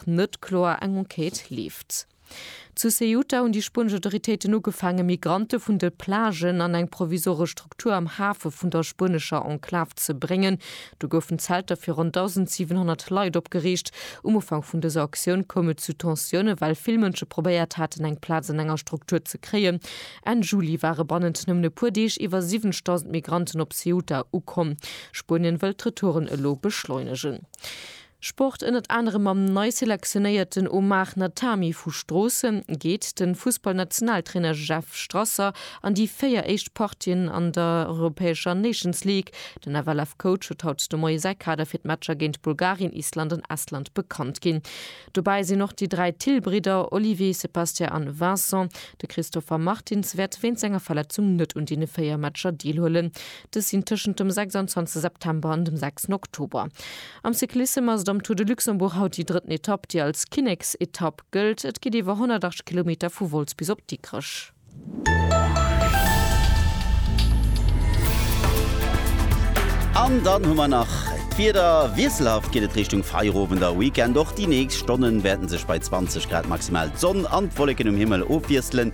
nach net kloer eng Enquête leeft. Zu Ceuta hunn déi spuenesch Autoritéiten ugefaangen, Migrante vun de Plagen an eng provisoresch Struktur am Hafe vun der spuenescher Enklav ze bréngen. Do goufen Zelter fir ronn 1.700 Leit opgeriicht. Um Ufank vun dëser Aktioun koum et zu Tensiounen, well vill Mënsche probéiert haten, eng Plaz an enger Struktur ze kréien. Enn Juli ware bannent nëmmen e puer Deeg iwwer 70.000 Migranten op Ceuta ukomm. Spuenien wëllt d'Retouren elo beschleunegen. Sport, Ënnert anerem mam nei selektionéierten Omar Natami vu Stroossen geet de Fussballnationaltrainer Jeff Strasser an déi 4 éischt Partien an der europäescher Nations League. Den FLF-Coach huet haut de Moie säi Kader fir d'Matcher géint Bulgarien, Island an Estland bekannt ginn. Dobäi sinn och déi dräi Thill-Bridder, Olivier, Sébastien an Vincent. De Christopher Martins wäert wéint senger Verletzung net un deene 4 Matcher deelhuelen. Dës sinn tëschent dem 26 September an dem 6 Oktober. Am Cyclissem ass et am Tour de Luxembourg haut déi drëtten Etapp, déi als Kinneksetapp gëllt. Et geet iwwer 108 Kilometer vu Wolz bis op Dikrech. An dann hu mer nach d'Wieder. Wiesselhaft geet et Richtung Feierowend a Weekend. Och déi nächst Stonnen wäerten sech bei 20 Grad maximal d'Sonn an d'Wolleken um Himmel ofwiesselen.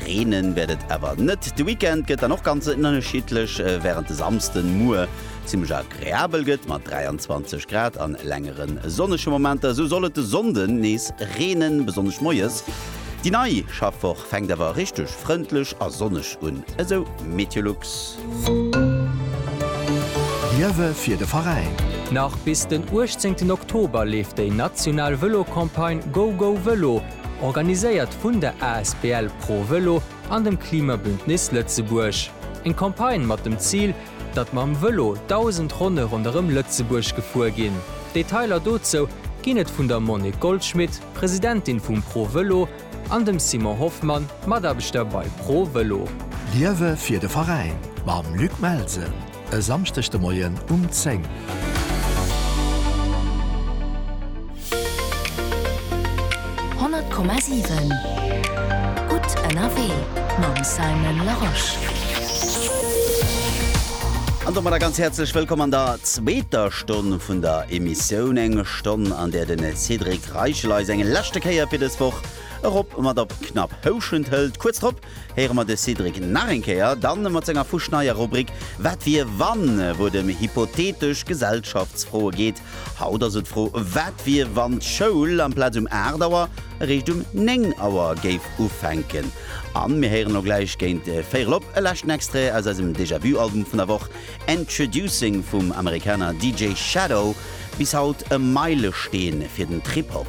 Reenen wäert et awer net. De Weekend gëtt dann och ganz ënnerschiddlech, während de Samsden muer zimmlech al. Reabel gëtt mat 23 Grad an längere sonnege Momenter. Sou soll et de Sonnde nees reenen, besonnesch moies. Déi nei Schaffwoch fänkt awer richteg frëndlech a sonneg un, esou Meteolux. Liewe fir de Veräin! Nach bis den 18 Oktober leeft déi national Vëlo-Campagne Go Go Vëlo, organiséiert vun der asbl Pro Vëlo an dem Klimabündnis Lëtzebuerg. Eng Campagne mat dem Zil, datt mam Vëlo 1000 Ronne ronderëm Lëtzebuerg gefuer ginn. Detailer dozou ginn et vun der Monique Goldschmit, Presidentin vum Pro Vëlo, an dem Simon Hoffmann, Mataarbechter bei Pro Vëlo. Liewe fir de Veräin mam Luc Melsen e Samschdeg de Moien um 10. 100,7 Gutt ënnerwee mam Simon Larosche. An domadder ganz häerzlech wëllkomm an der zweeter Stonn vun der Emissioun. Eng Stonn, an där de Cédric Reichel eis eng leschte Kéier fir dës Woch erop mat op Knapphouschent hëlt. Kuerz drop héiere mer de Cédric nach eng Kéier, da mat senger fuschneier Rubrik Wat wier wann? wou et ëm hypothetesch Gesellschaftsfroe geet. Haut ass et d'Fro, wat wier, wann d'Schoul amplaz um 8 Auer eréischt um 9 Auer géif ufänken? An mir héieren elo gläich géint véierel op e leschten Extrait aus eisem Déjà-Vu-Album vun der Woch, Introducing vum Amerikaner DJ Shadow, bis haut e Meilesteen fir den Trip-Hop.